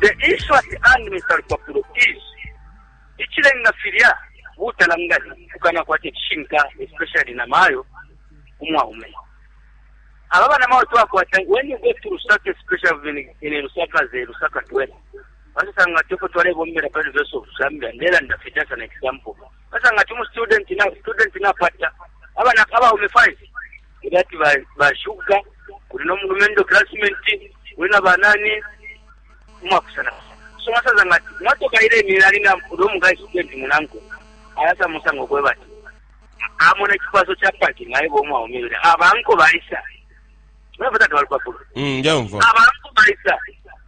The Israhi and Mr. Lupapulo is ichilenga filya butalangani kukana kwate chishinka especially na mayo umwaume aba bana mayo twakwata when you go to Lusaka especially in Lusaka ze Lusaka twela basasanga tuko twalebombera pa University of Zambia ndela ndafita sana example basanga tumu student na student na pata abana abaume five Kuli ati ba, ba shuga, kuli no mulumendo klasmenti, kuli na banani, umwakusana. So masaza ngati, mwatoka ile milali na ulo mga isukenti munangu, ayasa musango kwe bati. Amona kipaso cha paki na ibo mwa umile. Abanko baisa. Mwe bata kwa kwa kwa. Mm, njaumva. Abanko baisa.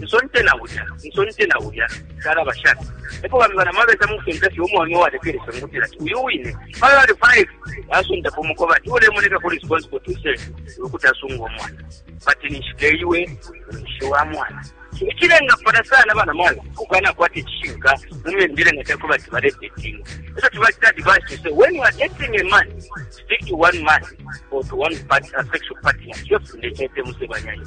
nsonte na ulya nsonte na ulya shalaba shani epo bambi banama beta mukusonta fye umwaume uwalekelesha mukutila ati uyu wine pala bali five asontapo umukoba ati ulemoneka ku responsible to say ukuti asunga umwana bati ninshike iwe ninshi wa mwana ikirenga fana sana abana mwana kugana kwati kishinga mumyendere nga teko bati bare dating eso tubakita advice to say when you are dating a man stick to one man or to one part, uh, sexual partner kyo fundekete musebanyayo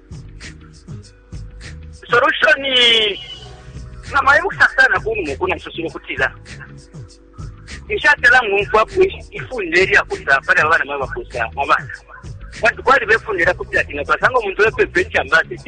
solution nga mwayibusa sana kunumu kuna musosile kutila nshatela ngumfwapo ifunde elyakusa pali abana mwe bakusa abana bantu kwali befundira kuti ati nga twasanga omuntu wepepa ekyambasi te